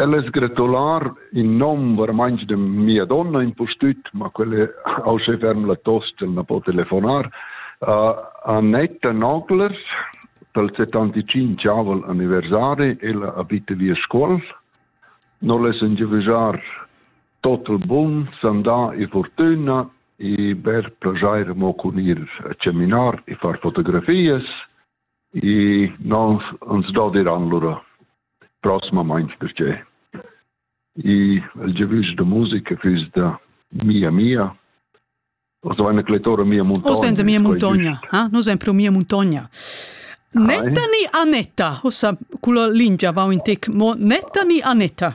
El es gratular in nom veramein de mia donna impustüt, ma quella au se ferm la tosta, el na po telefonar. Uh, Annetta Nogler, pel 75 aval anniversari, ella abita via Scuol. Non les engivejar tot il bun, sandà e fortuna e ber plagiar mo cun ir a seminar e far fotografias. I non ans dodiràn lura prosmamaing perche i il giavüsch da musica füss da mia mia o so eine kletora mia muntogna. O sen mia muntogna, ha? No sen pro mia muntogna. Netta ni Anetta, hossa, culla lingia vau in tec, mo Netta ni Anetta?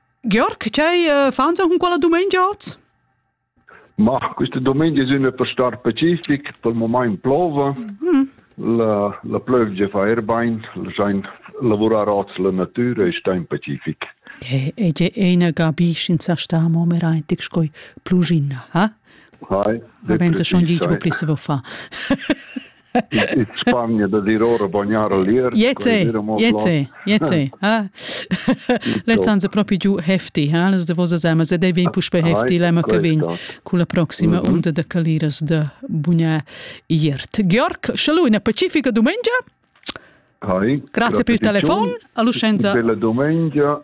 Georg, tgei eh, fans cun quella dumengia oz? Mach, questa domenica sind wir per Star Pacific, per moment plova. Mm. La, la plövgia fa er bain, schein lavurar oz la natura e sta in Pacific. E je ena gabisch in sa sta mo mer eintig skoi plugina, ha? Hai, wenn du schon die Probleme wo fa. in Spagna da dir ora bagnar al lier. Jete, jete, jete. Ah. Let hanno proprio giù hefti, ha les de vosa zamas e dei vin puspe hefti lema che vin con la prossima onda de caliras de bugnà iert. Georg, shalù una pacifica domenica. Hi, Grazie per il telefono. A Lucenza. Bella domenica